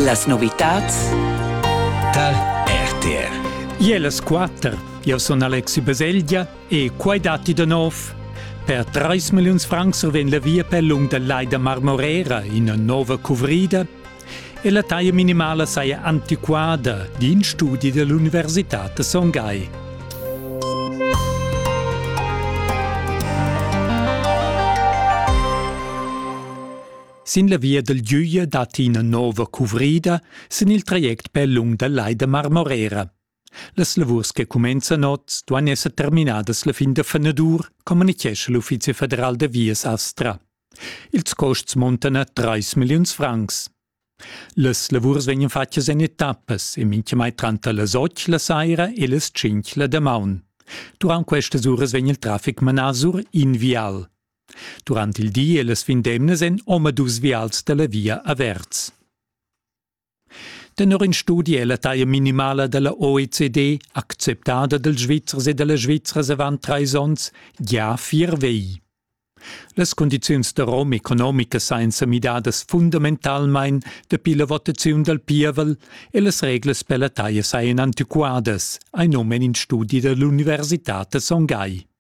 Las novitads tar RTR. Iellas quatter. Eu sun Alexi Baselgia e quai datti da nov. Per 3 milliuns francs survegn la via per lung da Leida Marmorera ina nova cuvrida e la taglia minimala saja antiquada d'in studi dell'Università da Son Gai. Sin la via del Düje dat ina nova cuvrida sin il traject per lung dal Lai da Marmorera. Las lavurs che cumenzan oz duan esser terminadas la fin da fenadur, communichescha l'Uffizi federal da vias Astra. Ils costs montan a 3 milliuns francs. Las lavurs vegnan fatgas en etappas e mintgamai tranter las 8 la saira e las 5 la damaun. Durant questas uras vegn il traffic manà sur in vial. Durant il di e las vindemnas èn omadus vials da la via averts. Tenor in studi è la taglia minimala da la OECD acceptada dals Svizzers e da las Svizzras avant trais onns gia vier vegl. Las cundiziuns da rom economicas sajan sa midadas fundamentalmain dapi la votaziun dal pievel e las reglas per la taglia sajan antiquadas, hai num en in studi da l'universitad da Songhai.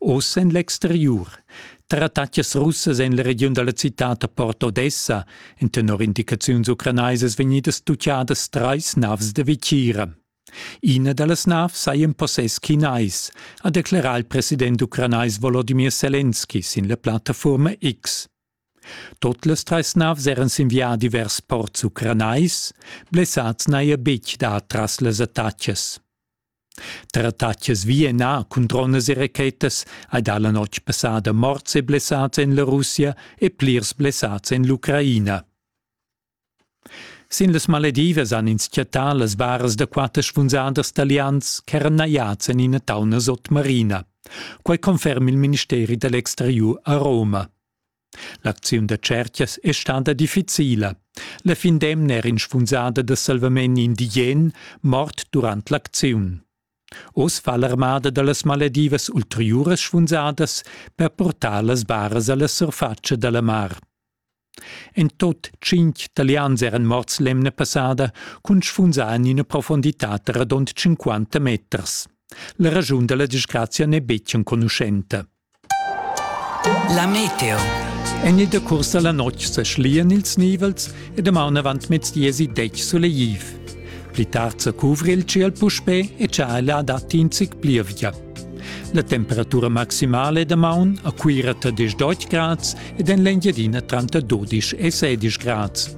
Oz en l'exteriur. Tratatgas russas en la regiun da la citad da Port Odessa èn tenor indicaziuns ucranaisas vegnidas tutgadas trais navs da vitgira. Ina da las navs saja in possess chinais, ha declerà il president ucranais Volodymyr Selenski sin la plattafurma X. Tot las trais navs eran sin viadi vers ports ucranais, blessads n'haja betg dà tras las attacas. Tratatschas vi e nà cun dronas e rachetas hai dà la notg passada morts e blessads en la Russia e plirs blessads en l'Ucraina. Sin las Maledivas han ins chattà las varas da quatter spunsadas talians ch'eran najads en ina tauna sotmarina. Quai conferma il ministeri da l'exteriur a Roma. L'acziun da tschertgas è stada difficila. La fin d'emna era inspunsada da salvament indigen mort durant l'acziun. Oz fa l'armada da las maledivas ulteriuras spunsadas per portar las baras a la surfatscha da la mar. En tot tschintg talians eran morts l'emna passada cun spunsar en ina profonditad radund 50 meters. La raschun da la disgrazia n'è betg enconuschenta. La meteo. En ida cursa la notg seschlien ils nivels e damaun avant mezdiesi detg sulegliv. Pli tard se cuvri il ciel puspè e tschaila dat in zic plievia. La temperatura maximale damaun a Cuira 30 grads ed en l'Engiadina 32 e 16 grads.